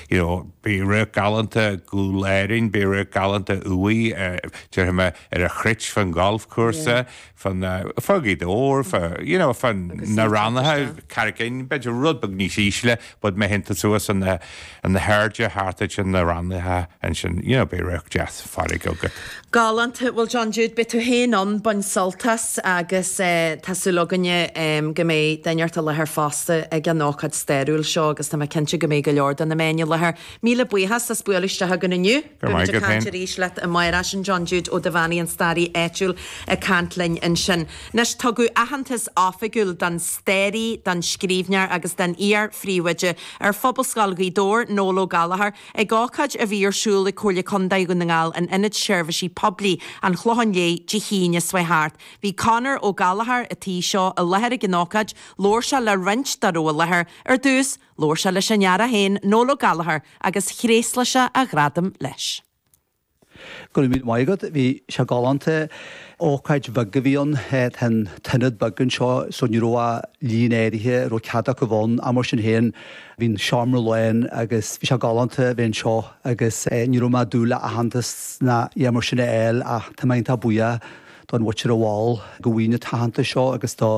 you know beidh radharc galánta Ghabhla Éirinn, beidh radharc galánta uaidh déarfaidh mé ar an Chruit fán ghalfchúrsa, fá Ghaoth Dobhair, fá you know fá na Rannaithe, Carraig Fhinn, b'fhéidir rud beag níos ísle but má théann tú suas na hairde thart ansin na Rannaithe ansin you know beidh radharc deas farraige agat. Galánta, bhuel John Jude, beidh tú féin ann, bain sult as agus tá súil againne go mbeidh daoine eile i láthair fosta ag an ócáid stairiúil seo agus tá mé cinnte go mbeidh go leor de na meáin i láthair. Míle buíochas as bualadh isteach againn inniu. Go raibh maith agat, ag caint arís leat amárach sin John Jude Ó Dubheannaigh, an staraí áitiúil ag caint linn ansin. Anois tugadh aitheantas oifigiúil don staraí, don scríbhneoir agus don iar-phríomhoide ar Phobalscoil Ghaoth Dobhair, Noel Ó Gallchóir, Ag ócáid a bhí ar siúl ag Comhairle Contae Dhún na nGall in Ionad Seirbhísí Poiblí an Chlocháin Léith Dé hAoine seo thart, bhí Conor Ó Gallchóir, an tí seo, i láthair ag an ócáid, labhair sé le roinnt dá raibh i láthair, ar dtús, labhair sé leis an fhear é féin, Noel Ó Gallchóir, agus thréaslaigh sé a ghradam leis. Go raibh míle maith agat, bhí sé galánta. Ócáid bheag a bhí ann, tá an t-ionad beag anseo so ní raibh ach líon áirithe a raibh cead acu ann ach mar sin féin bhí an seomra lán agus bhí sé galánta a bheith anseo agus ní raibh mé ag dúil le aitheantas ná a dhath mar sin a fháil ach tá mé iontach buíoch don Bhuitir a mhol go bhfaighinn an t-aitheantas seo agus do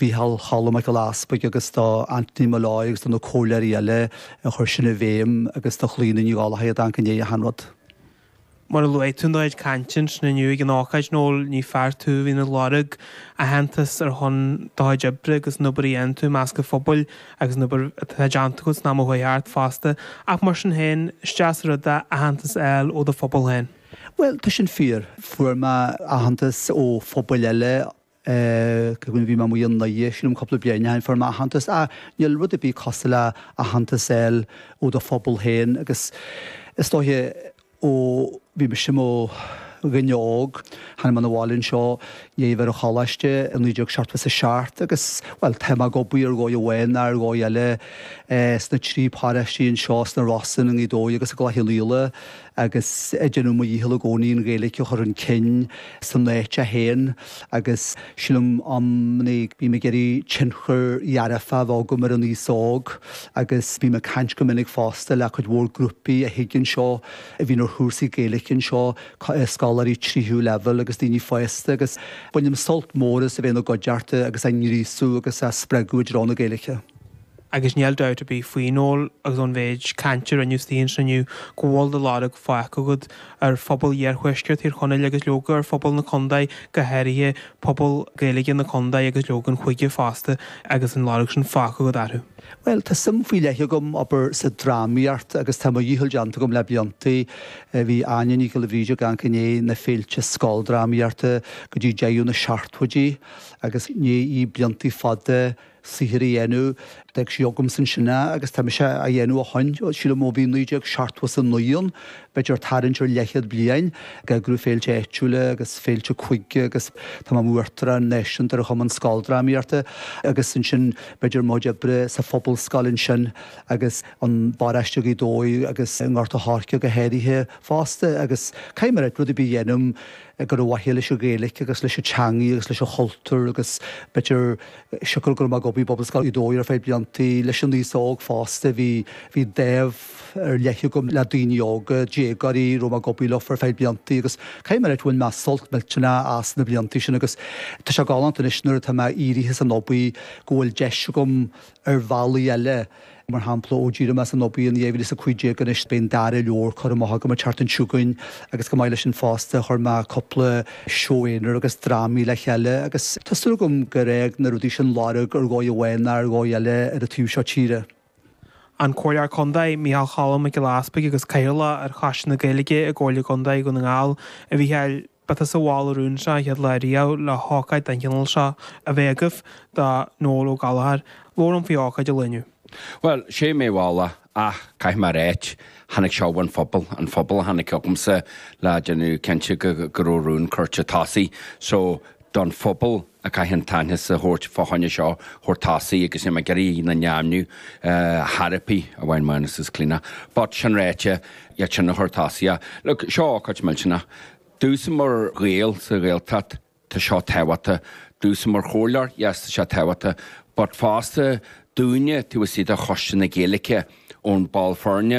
Mhícheál Cholm Mac Giolla Easpaig agus do Anthony Molloy agus do na comhairleoirí eile a chuir sin i bhfeidhm agus do Chlíodhna Ní Dhálaigh a d'amharc i ndiaidh achan rud. Mar a luaigh tú in do chuid cainte ansin inniu ag an ócáid Noel ní fear tú a bhíonn ag lorg aitheantas ar son do chuid oibre agus an obair a dhéanann tú i measc an phobail agus an obair atá déanta agat san am a chuaigh thart fosta ach mar sin féin is deas rud é aitheantas a fháil ó do phobal féin. Bhuel, tá sin fíor. Fuair mé aitheantas ó phobail eile, cé go raibh mé amuigh i nDoire, sílim cúpla bliain ó shin, fuair mé aitheantas ach níl rud ar bith cosúil le aitheantas a fháil ó do phobal féin agus is dóiche ó bhí mise i mo dhuine óg, tháinig mé chun an bhaile anseo, i ndiaidh a bheith ar an choláiste i naoi déag seachtó is a seacht agus, bhuel, tá mé ag obair ar dhóigh amháin nó ar dhóigh eile sna trí paróistí anseo, sna Rosann, i nGaoth Dobhair agus i gCloich Cheann Fhaola. agus déanaim mo dhícheall i gcónaí an Ghaeilge a chur chun cinn san áit a théim agus sílim i gcónaí go mbím ag iarraidh tionchar dhearfach a bheith agam ar an aos óg agus bím ag caint go minic fosta le cuid mhór grúpaí a thig anseo a bhíonn ar chúrsaí Gaeilge anseo, scoláirí tríú leibhéal agus daoine fásta agus bainim sult mór as a bheith ina gcuideachta agus á ngríosadh agus á spreagadh i dtreo na Gaeilge. agus níl dabht ar bith faoi, Noel, agus ón mhéid cainte a rinneadh anseo inniu go bhfuil do lorg fágtha agat ar phobal iarthuaisceart Thír Chonaill agus leoga ar phobal na Condae go háirithe, pobal Gaeilge na Condae agus leoga an chúige fosta agus an lorg sin fágtha agat orthu. Bhuel, tá suim faoi leith agam obair sa drámaíocht agus tá mo dhícheall déanta agam le bliantaí. Bhí Áine Nic Giolla Bhríde ag amharc i ndiaidh na féilte scoldrámaíochta go dtí deireadh na seachtóidí agus rinne sí bliantaí fada, saothar a dhéanamh. D'fhág sí agamsa ansin é agus tá mise á dhéanamh ó shoin. Sílim ó bhí naoi déag seachtó is a naoi ann, b'fhéidir ag tarraingt ar leathchéad bliain, ag eagrú féilte áitiúla agus féilte cúige agus tá mé i mo Uachtarán Náisiúnta ar Chumann Scoldrámaíochta agus ansin b'fhéidir mo chuid oibre sa Phobalscoil ansin agus i bparóiste Ghaoth Dobhair agus i nGort a' Choirce go háirithe fosta agus caithfidh mé rud ar bith a dhéanamh ar mhaithe leis an Ghaeilic agus leis an teangaidh agus leis an chultúr agus b'fhéidir Siocair go raibh mé ag obair i bPobalscoil Ghaoth Dobhair ar feadh bliantaí leis an aos óg fosta, bhí dáimh ar leith agam le daoine óga, déagóirí, raibh mé ag obair leofa ar feadh bliantaí agus caithfidh mé a rá go bhfuair mé sult millteanach as na bliantaí sin agus tá sé galánta anois nuair atá mé éirithe as an obair go bhfuil deis agam ar bhealaí eile. Mar shampla, ó d'éirigh mé as an obair in 2015 anois beidh an dara leabhar curtha amach agam, an tseachtain seo chugainn, agus chomh maith leis sin fosta chuir mé cúpla seó aonair agus drámaí le chéile agus tá súil agam gur fhág na rudaí sin lorg ar dhóigh amháin nó ar dhóigh eile ar an taobh seo tíre. An Comhairleoir Contae, Micheál Cholm Mac Giolla Easbuig agus Cathaoirleach ar Choiste na Gaeilge i gComhairle Contae Dhún na nGall, a Mhicheáil. Ba tusa a mhol an rún seo an chéad lá ariamh le hócáid den chineál seo a bheith agaibh do Noel Ó Gallchóir, labhair linn faoi ócáid an lae inniu. Bhuel, sé mé a mhol é, ach caithfidh mé a rá, tháinig seo ón phobal, an phobal a tháinig chugamsa le déanamh cinnte go raibh rún curtha chun tosaigh. So, don phobal a chaithfear an t-aitheantas a thabhairt fá choinne seo a chur chun tosaigh agus níl mé ag iarraidh a n-ainmniú therapy amháin Mánus is Clíona but sin ráite iadsan a chuir chun tosaigh é look seo ócáid millteanach domhsa mar Ghael sa Ghaeltacht tá seo tábhachtach domhsa mar chomhairleoir yes tá sé tábhachtach but fosta dúinne taobh istigh de Choiste na Gaeilge ón ball foirne